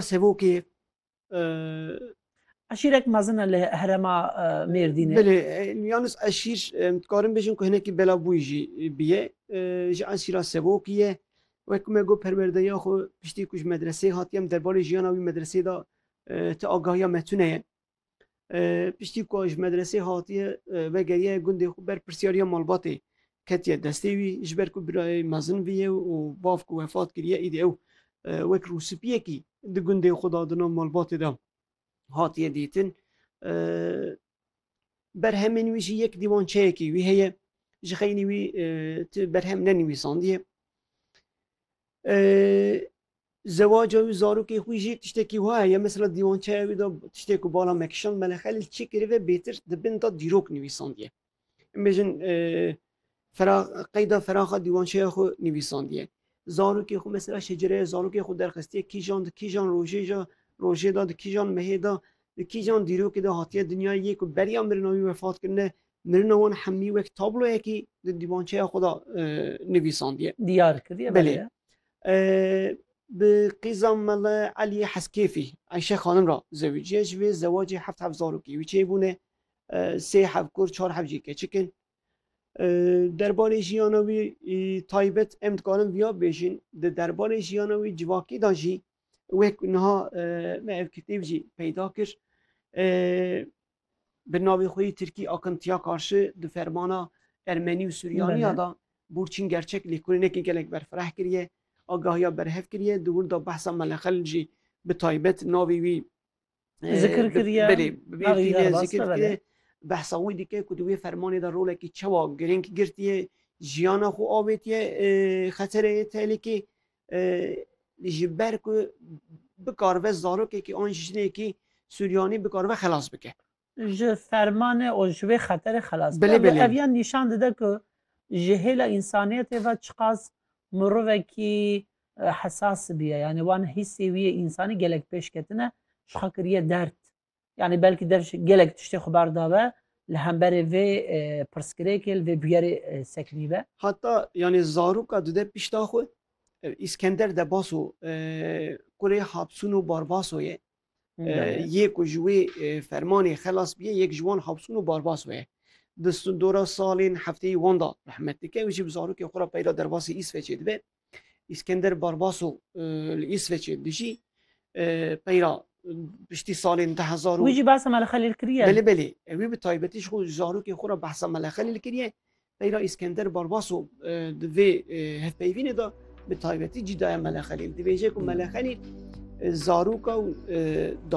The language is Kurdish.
Sevokê e. Eşîrek mezin e li herêma Mêrdînê. Belê, yanis eşîr dikarin bêjin ku hinekî belavbûyî jî bûye. Ji eşîra Sevokî ye. Wek ku me got perwerdeya xwe piştî ku ji medreseyê hatiye em derbarê jiyana wî medreseyê de ti agahiya me tune ye. Piştî ku ji medresê hatiye vegeriye gundê xwe ber pirsyariya malbatê ketiye destê wî ji ber ku birayê mezin viye û bav ku wefat kiriye îdî ew wek rûspiyekî di gundê xwe da di nav malbatê de hatiye dîtin. Berhemên wî jî yek dîwançeyekî wî heye ji xeynî wî ti berhem nenivîsandiye. Zewaca wî û zarokê xwî jî tiştekî wiha heye. Mesela dîwançeya wî de tiştê ku bala me kişand Melih Xelîl çê kiribe bêtir di bin de dîrok nivîsandiye. Em bêjin qeyda feraxa dîwançeya xwe nivîsandiye. Zarokê xwe mesela şecereya zarokê xwe derxistiye kîjan di kîjan rojê ja rojê de di kîjan mehê de di kîjan dîrokê de hatiye dinyayê yê ku beriya mirina wî wefat kirine Mirina wan hemî wek tabloyekî di dîwançeya xwe da nivîsandiye. Diyar kiriye belê. Bi qîza Mele Eliyê Heskêfî Eyşe xanim ra zewiciye ji vê zewacê heft hev zarokî wî çê bûne sê hev kur çar hev jî keçik in. Derbarê jiyana wî taybet em dikarin viya bêjin di derbarê jiyana wî civakî da jî wek niha me ev kitêb jî peyda kir bi navê xwe yê Tirkî akıntiya karşı di fermana Ermenî û Suryanîya da Burçîn Gerçek lêkolînekê gelek berfireh kiriye, agahiya berhev kiriye, di wir da behsa Meleqel jî bi taybet navê wî Zikir kiriye, belê bi vê navê tîne zikir Yarbasta, belê. kiriye. Behsa wî dike ku di wê fermanê da rolekî çewa girîng girtiye, jiyana xwe avêtiye e, xetereyê tehlîkê ji ber ku bikaribe zarokekî an jinekî Suryanî bikaribe xelas bike. Ji fermanê û ji wê xeterê xelas bike. Ev ya nîşan dide ku ji hêla însaniyetê ve çiqas mirovekî hesas biye. Yanî wan hîsê wî yê însanî gelek pêş ketine, jixwe kiriye derd. Yanî belkî dev ji gelek tiştê xwe berdabe li hemberê vê pirsgirêkê li vê bûyerê sekinîbe. Heta yanî zaroka dide pişta xwe ev Îskender Debaso kurê Hapsûno Barbaso ye. Yê ku ji wê fermanê xelas bîye yek ji wan Hapsûno Barbaso ye. Di sindora salên hefteyî wan de rehmet dike û jî bi zarokê xwe re peyda derbasî Îsveçê dibe. Îskender Barbaso li Îsveçê dijî peyra piştî salên du hezar û Wî jî behsa Mele Xelîl kiriye. Belê belê wî bi taybetî ji xwe zarokên xwe re behsa Mele Xelîl kiriye. Peyra Îskender Barbaso di vê hevpeyvînê de bi taybetî cî daye Mele Xelîl. Dibêje ku Mele Xelîl zaroka û